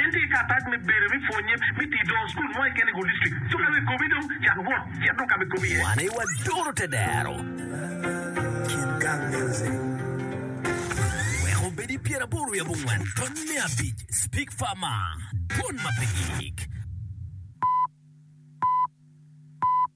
En tye ki karatac me bedo me pwonye me tii doo school mo keken i District. Cuk aye ekobi dong cak wot cit dong kama ekobi iye. Wan aye wadoro te dero. Kit gang music. Wek obed i pyer aboro wiye abongwen tony me abic speak far ma dwon ma pe gik.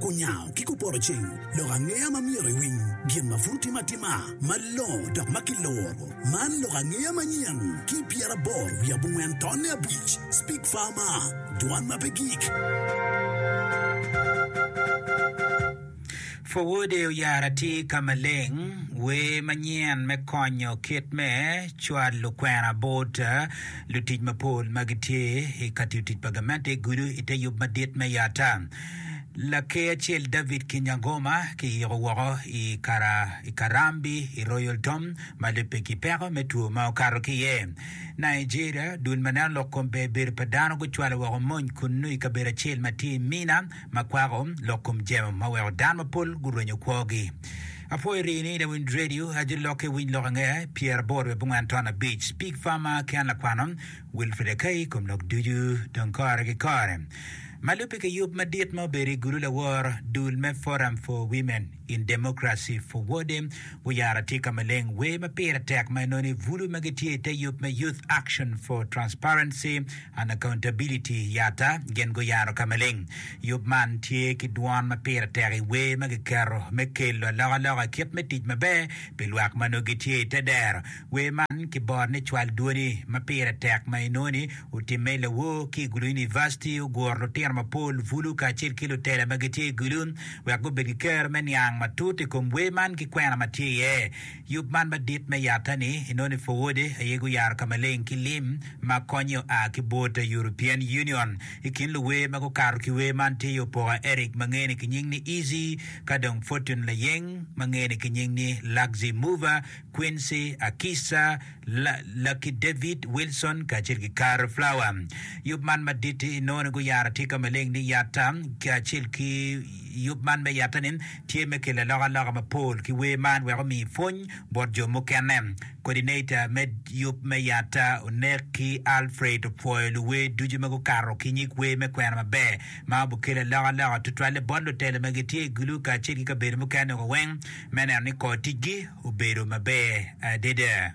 Kunyango ki kupoto ceng lok angeya ma myero iwiny gin ma pud otim atima malongo dok ma kiloro. Man lok angeya manyen ki pyeraboro wiye abongwen tonne abic, Speak Farmer, Dwan ma pe gik. Forwode oyaro atir ka maleng wer manyen me konyo kit me cwalo kwena bot Lutic mapol ma gitye i ka tiyo tic pa gamente gudo i te yub madit me yata. Laker acel David Kinyangoma kiyiko woko i kara i Karambi i Royal Tom ma lubbe ki peko me two ma okato ki iye. Nigeria, Dul ma neno lok kom ber bedo pa dano gucwalo woko mony kunnu i kabedo acel ma tye i Minna ma kwako lok kom jemo ma weko dano mapol gurwenyo kwogi. Apwoyo rii ni lawinj radio ajo lokke winy lok ange pyer aboro bit abongwen ton abic pig farmer ki an lakwano Wilfred Akai kom lok ducu dong kore ki kore malube ki yub madit ma obedo i gulu lawor dul me forum for women in democracy for wode wuyaro atika maleng wer ma pire tek ma inoni bulu ma gitye ite yub me youth action for transparency Unaccountability Yatta gin guyaro ka maleng yub man tye ki dwon ma pire tek i wer ma kiketo me kelo alokaloka i kit me tic maber pi lwak ma nongo gitye i te dero. Wer man kiboro ni Cwal Dwoni ma Pire Tek ma inongo ni otimme i lawor ki i Gulu Univaciti oguro lutino mapol bulu kacel ki lutela ma gitye i Gulu wek gubed ki kero me niang matut i kom wer man ki kwena ma tye iye. Yub man madit me yatta-ni inongo ni Forward aye guyaro ka maleng ki lim ma konye oa ki bot European Union. I kin luwer ma gukato ki wer man tye iye Opoka Eric ma ngene ki nying ni Easy, ka dong Fortune Layeng ma ngene ki nying ni Luxy Mover, Quincy Akisa, La, Lucky David, Wilson kacel ki Carl Flower. Yub man madit-ti inongo ni guyaro atika maleng ni yatta kacel ki yub man me yatta-ni. tye me kelo alokaloka mapol ki wer man wek omi pwony bot jo mukene. Coordinator me yub me Yatta Onek ki Alfred opwoyo luwer ducu ma gukato ki nyig wer me kwena maber ma obikelo alokaloka tutwalle bot lutelo ma gitye i gulu kacel ki kabedo mukene woko weng me neno ni kor ticgi obedo maber adada.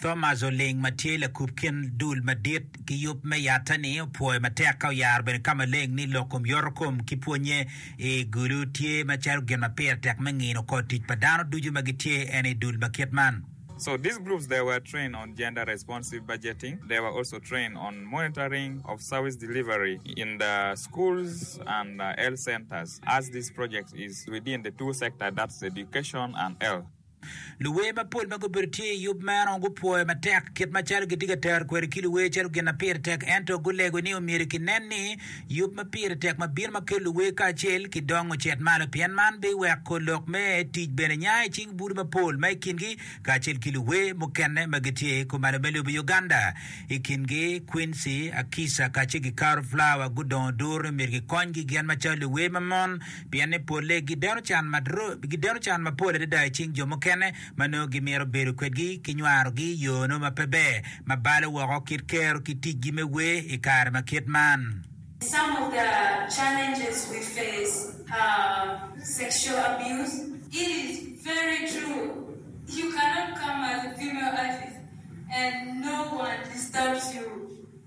Thomas Oling ma tye lakub kin dul madit ki yub me yatte-ni opwoyo matek ka oyaro bene ka maleng ni lok kom yorokom ki pwonye i gulu tye macalo gin ma pire tek me ngino kor tic pa dano ducu ma gitye en i dul ma kit man. So these groups they were trained on gender responsive budgeting, they were also trained on monitoring of service delivery in the schools and health centers as this project is within the two sector that's education and health. Luwer mapol ma gubedo tye i yub meno gupwoyo matek kit macalo gitye ka tero kwede ki luwer calo gin ma pire tek ento gulego ni omyero kinen ni yub ma pire tek ma bino ma kelo luwer kacel ki dong ocit malo pien man biweko lok me tic bene nya i cing bute mapol ma i kingi kacel ki luwer mukene ma gitye kumalo me lobo Uganda i kingi Quincy Akisa kacel ki Carol Flower gudongo duru ni myero gikonygi gin macalo luwer ma mon pienne polle gideno can mapol adada i cing jo mukene ma nongo gimito bedo kwedgi ki nywarogi i yo nongo ma pe ber ma balo woko kit kero ki ticgi me wer i kare ma kit man. Some of the challenges we face are sexual abuse. It is very true you cannot come as a female artist and no one disturbs you.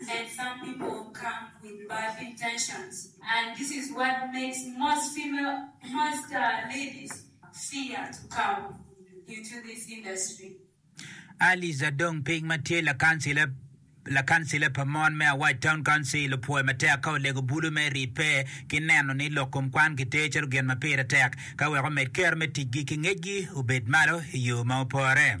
and some people come with bad intentions and this is what makes most female most ladies fear to come into this industry. Alice Adong Ping ma tye lakancila lakancila pa mon me Awac Town Council opwoyo matek ka olego bulu me ribbe ki neno ni lok kom kwan kiter calo gin ma pire tek ka wek omed kero me ticgi ki ngecgi obed malo i yo ma opore.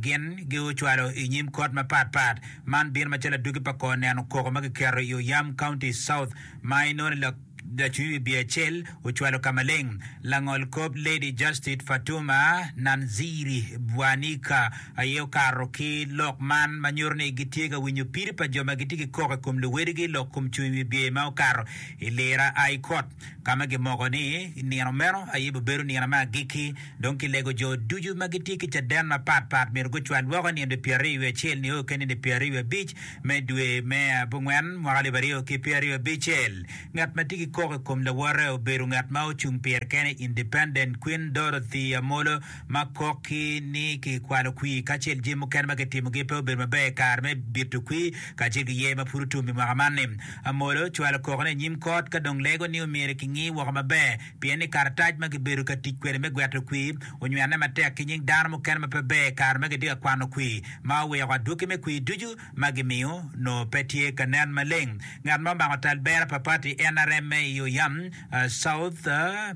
Gin giocwalo i nyim kot mapat pat. Man bino macalo adwogi pa kor neno koko ma kiketo i Oyam County South ma inoni lacwiny wi biye acel ocwalo ka maleng. Langol kop Lady Justice Fatuma Nanziri Bwanika aye okato ki lok man ma nyuto ni gitye ka winyo piri pa jo ma gitye ki koko i kom luwedigi lok kom cwiny wi biye ma okato i lira a i kot. ka ma gimoko ni, I nino meno aye bibedo nino me agikki, dong kilego jo ducu ma gitye ki caden mapat pat myero gucwal woko i nino pyeraryo wiye acel nio ki nino pyeraryo wiye abic me dwe me abongwen mwaka alip aryo ki pyeraryo abicel. Ngat ma tye ki kok i kom lawote obedo ngat ma ocung pire kene, Independent, Queen Dorothy Amolo. ma kok ki ni kikwalo kwir kacel jami mukene ma kitimogi pe obedo maber i kare me bito kwir kacel ki yer ma pud otum i mwaka man-ni. Amolo cwalo kokone i nyim kot ka dong lego ni omyero kingi woko maber pien ni karatac ma kibedo ka tic kwede me gweto kwir onywene matek ki nying dano mukene ma pe ber i kare ma kitye ka kwano kwir ma oweko adwogi me kwir ducu ma gimiyo nongo pe tye ka nen maleng. Ngat ma omako tal bera pa pati NRM-me i Oyam, South,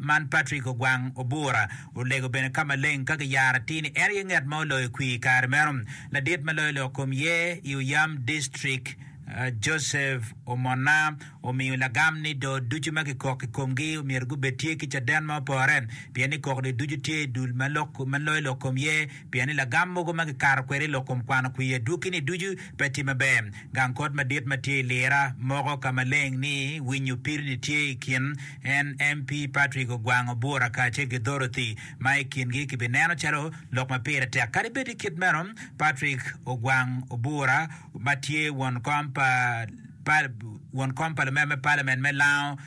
man Patrick Ogwang Obura olego bene ka maleng ka giyaro atir ni en aye nget ma oloyo kwir i kare meno. Ladit ma loyo lok kom ye i Oyam District, Joseph Omona omiyo lagam ni do ducu ma kikok i komgi myero gubed tye ki caden ma opore pien ni kok do ducu tye i dul ma loyo lok kom ye Pien ni lagam mogo ma kikato kwede i lok kom kwano kwir adwogi-ni ducu pe tye maber. Gang kot madit ma tye i lira moko ka maleng ni winyo pirini tye i kin en MP Patrick Ogwango Bura kacel ki Dorothy ma i kingi kibineno calo lok ma pire tek. Kadi bed ni kit meno, Patrick Ogwang Obura ma tye won kom pa won kom pa lumer me Parliament me Lango,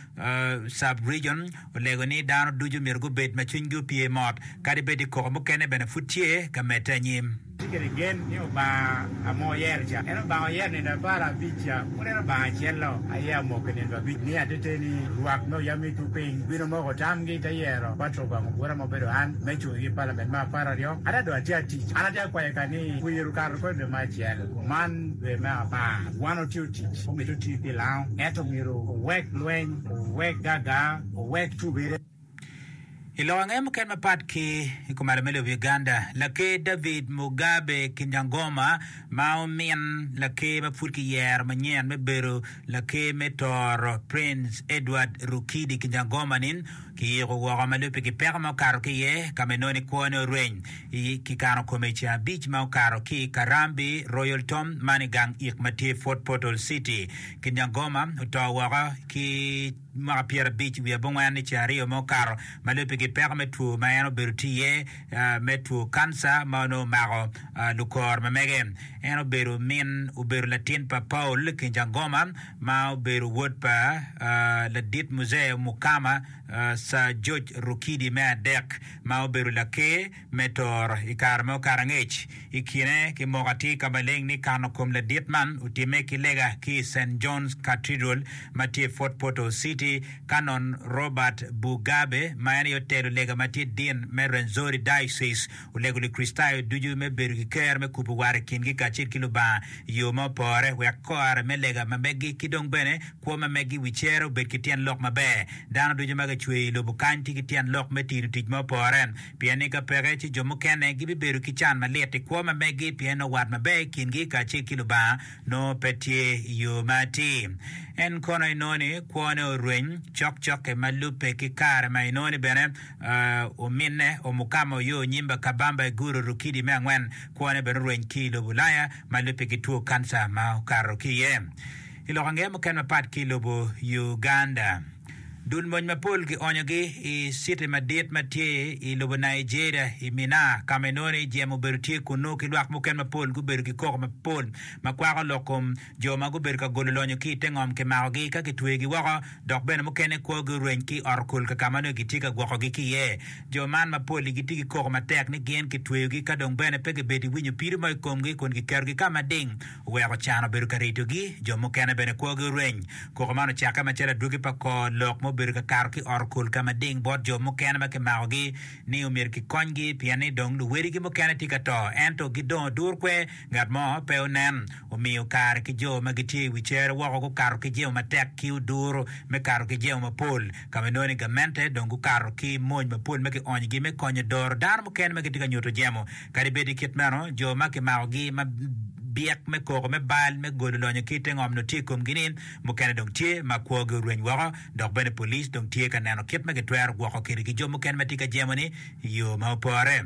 Sub-Region olego ni dano ducu myero gubed ma cwinygi opye mot kadi bed ni koko mukene bene pud tye ka medde anyim. Watye kwede gen ni Lubanga a ma wayero ca, en Lubanga ma wayero nino apar abic ca, pud en Lubanga acel lok aye amoki nino abic. Miyo ateteni ni lwak me oyam me tuku piny obino omoko tamgi te yero Patrol gwang ogura ma obedo an me cung i Palament me apar aryo. Ada dong atye atic. An atye akwayo ka ni wiye ru kato kodi dwe me acel, kuman dwe me apar. Wan otye. Omito tii pi lango ento myero owek lweny, owek gaga, owek tubere. I lok ange mukene mapat ki i kom arem me lobo Uganda, Laker David Mugabe Kinyangoma ma omin laker ma pud ki yero manyen me bedo laker me toro Prince Edward Rukidi Kinyangoma ni, Kiyiko woko ma lubbe ki peko ma okato ki iye, ka ma inoni kwone oreny. I kikano kome i ceng abic ma okato ki i Karambi, Royal Tom, man i gang ik ma tye i Fort Portal City. Kinyangoma oto woko ki mwaka pyera abic wiye abongwen i ceng aryo ma okato ma lubbe ki peko me two ma en obedo tye iye me two kanca ma onongo omako lukor ma mege. En obedo min obedo latin pa Paul Kinyangoma. ma obedo wod pa ladit Muzee Mukama, Sir George Rukidi me adek, ma obedo Laker me Tooro i kare ma okato angec. I kine ki moko atir ka maleng ni kano kom ladit man otimme ki lega ki i Saint John's Cathedral ma tye i Fort Portal City, Canon Robert Bugabe ma en aye otelo lega ma tye Dean me Rwenzori Diocese, Olego Lukricitayo ducu me bedo ki ker me kubo war i kingi kacel ki Lubanga i yo ma opore wek kore me lega ma meggi ki dong bene kwo ma meggi i wi cere obed ki tyen lok maber. Dano ducu ma kicweyo i lobo kany tye ki tyen lok me tino tic ma opore, pien ni ka peke ci jo mukene gibibedo ki can malit i kwo ma meggi pien nongo wat maber i kingi kacel ki Lubanga nongo pe tye i yo ma atir. En kono inongo ni kwone orweny cokcok-ki ma lubbe ki kare ma inongo ni bene Ominne Omukama Oyoo Onyimba Kabamba I Guru Rukidi me angwen kwone bene orweny ki I lobo Ulaya ma lubbe ki two kanca ma okato ki iye I lok angeye mukene mapat ki I lobo Uganda. Dul mony mapol ki onyo gi I city madit ma tye I lobo Nigeria I Minna kama inongo ni jem obedo tye kunnu ki lwak mukene mapol gubedo ki koko mapol ma kwako lok kom jo ma gubedo ka golo lonyo ki i te ngom kimakogi ka kitweyogi woko, dok bene mukene kwogi oreny ki i ot-okul ka ka ma nongo kitye ka gwokogi ki iye. Jo man mapol-li gitye ki koko matek ni gin kitweyogi ka dong bene pe gibedo ki winyo pido mo i komgi kun kiketogi ka ma ding oweko can obedo ka ritogi. Jo mukene bene kwogi oreny. Koko man ocakke macalo adwogi pa kor lok ma obedo ka kato ki i ot-okul ka ma ding bot jo mukene ma kimakogi ni omyero kikonygi pien ni dong luwedigi mukene tye ka to ento gidongo durkwe, ngat mo pe onen. omiyo kare ki jo ma gitye i wi cere woko gukato ki jemo matek ki oduro me kato ki jemo mapol, ka ma inongo ni gamente dong gukato ki mony mapol me kionyogi me konyo doro dano mukene ma gitye ka nyuto jemo. Kadi bed ni kit meno, jo ma kimakogi ma byek me koko me bal me golo lonyo ki i te ngom nongo tye i komgi-ni, mukene dong tye ma kwogi orweny woko. Dok bene police dong tye ka neno kit ma gitwero gwoko kede ki jo mukene ma tye ka jemo-ni i yo ma opore.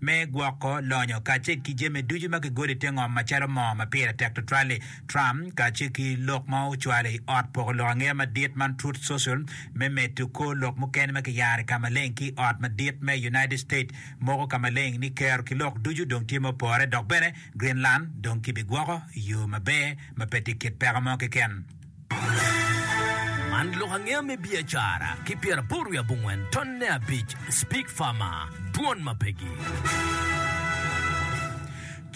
me gwoko lonyo kacel ki jami ducu ma kigolo i te ngom macalo moo ma pire tek tutwal-li. Trump kacel ki lok ma ocwalo i Ot Poko Lok Angeya Madit man Truth Social me medo kor lok mukene ma kiyaro i ka maleng ki i Ot Madit me United States moko ka maleng ni kero ki lok ducu dong tye ma opore dok bene Greenland dong kibigwoko i yo maber ma pe tye kit peko mo keken. Man lok angeya me biacara ki pyeraboro wiye abongwen tonne abic Speak Farmer, Dwon ma pegi.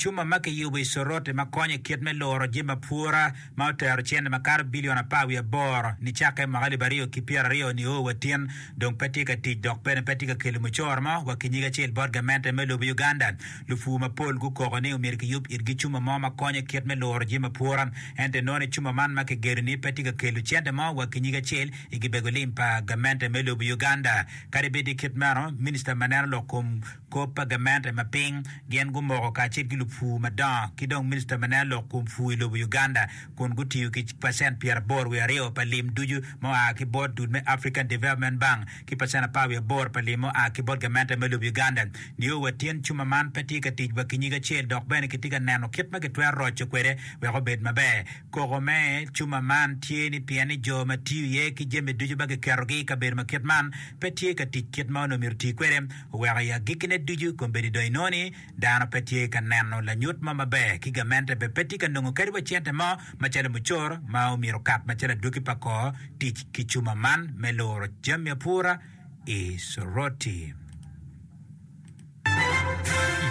Cuma ma kiyubo i Soroti ma konyo i kit me luro jami ma pwora ma otero cente makato bilion apar wiye aboro nicakke i mwaka alip aryo ki pyera aryo ni oo wa tin dong pe tye ka tic dok bene pe tye ka kelo mucoro mo wa ki nyige acel bot gamente me lobo Uganda Lupur mapol gukoko ni omyero kiyub itgi cuma mo ma konyo kit me luro jami apwora. Ento inongo cuma man ma kigedo ni pe tye ka kelo cente mo wa ki nyig acel i gibego lim pa gamente me lobo Uganda. Kadi bed tye kit meno, minista ma neno lok kom kop pa gamente ma piny gin gumoko kacel ki lupur madongo ki dong minista ma neno lok kom pur i lobo Uganda kun gutiyo ki pacent pyeraboro wiye aryo pa lim ducu ma oa ki bot dul me African Development Bank ki pacen apar wiye aboro pa lim mua ki bot gamente me lobo Uganda nio wa tyen cuma man pe tye ka tic wa ki nyig acel dok bene kitye ka neno kit ma kitwero roco kwede wek obed maber. Koko me cuma man tye ni pien ni jo ma tiyo iye ki jami ducu ma kiketogi i kabedo ma kit man pe tye ka tic kit ma onongo myero oti kwede, oweko i agikkine ducu kombeddi dong inongo ni Dano pe tye ka neno lanyut mo maber ki gamente bene pe tye ka nongo kadi wa cente mo macalo mucoro ma omyero okat macalo adwogi pa kor tic ki cuma man me luro jami apura i Soroti.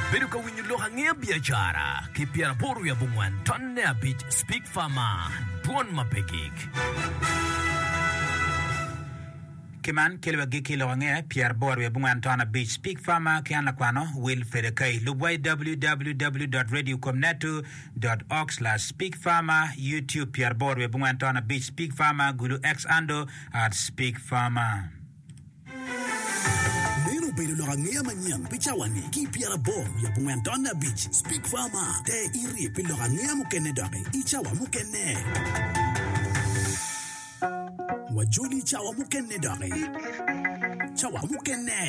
Ibedo ka winyo lok angeya biacara ki pyera aboro wiye abongwen tonne abic Speak Farmer, Dwon ma pe gik. Ki man, kelo wa gikki lok ange, pyeraboro aryo abongwan ton abic. Pig Farmer ki an lakwano, Will Fedekai. Lub wa i www.radiocomnetu. org/pig Farmer, Youtube, pyeraboro aryo abongwan ton abic, Pig Farmer, Gulu Xando, Arts Pig Farmer. Meno obedo lok angeya manyen pi cawa-ni ki i pyeraboro wiye abongwen tonne abic, Pig Farmer. Te irye pi lok angeya mukene doki i cawa mukene. Wajoli cawa mukene doki. Cawa mukene.